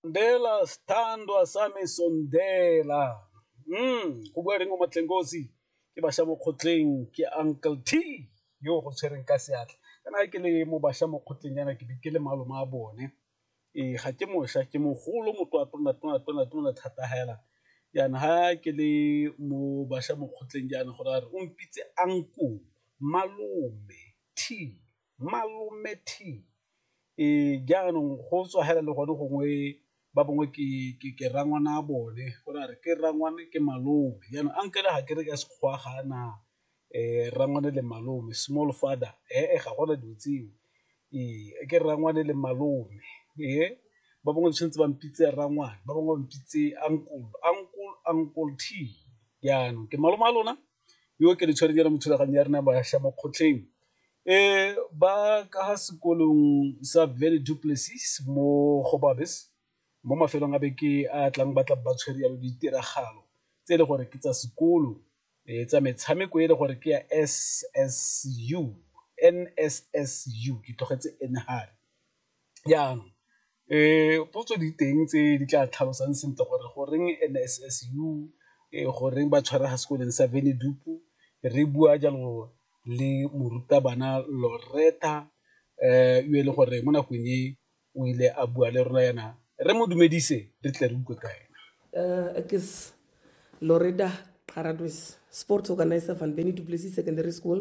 Ndela Sthandwa Sami Sondela go bua Reng Momatleng Kosi ke bašwa mo kgotleng ke Uncle T yo go tshwereng ka seatla kana ke le mo bašwa mo kgotleng yana ke be ke le malome a bone ee ga ke mošwa ke mogolo motho a tona tona tona tona thata hela yana ha ke le mo bašwa mo kgotleng jaana go ra re o mpitse uncle, malome, T. Malome T, Ee, jaanong go tswa hela le gone gongwe ba bangwe ke rangwana a bone go ra re ke rangwane ke malome jaanong uncle ga ke re ka Sekgowa ga a na rangwane le malome, small father ee ga gona dilo tseo. Ee, ke rangwane le malome ba bangwe ba tshwanetse ba mpitse rangwane ba bangwe ba mpitse uncle, uncle, uncle T, jaanong ke malome wa lona yo ke le tshwereng mo thulaganyong ya rona ya bašwa mo kgotleng E ba ka ga sekolong sa Vele Du Plessis mo Gobabis mo mafelong a beke a tlang ba tla ba tshwere yalo ditiragalo tse e le gore ke tsa sekolo tsa metshameko e le gore ke ya NSSU ke tlogetse N hare Jaanong potso di teng tse di tla tlhalosang sentle gore goreng NSFAS_U, goreng ba tshwara ga sekolong sa re bua jalo le morutabana Loretta yo e leng gore mo nakong e o ile a bua le rona yana re mo dumedise re tle re utlwe ka ena. Ek is Loretta Xaratwes, Sports Organiser van Secondary School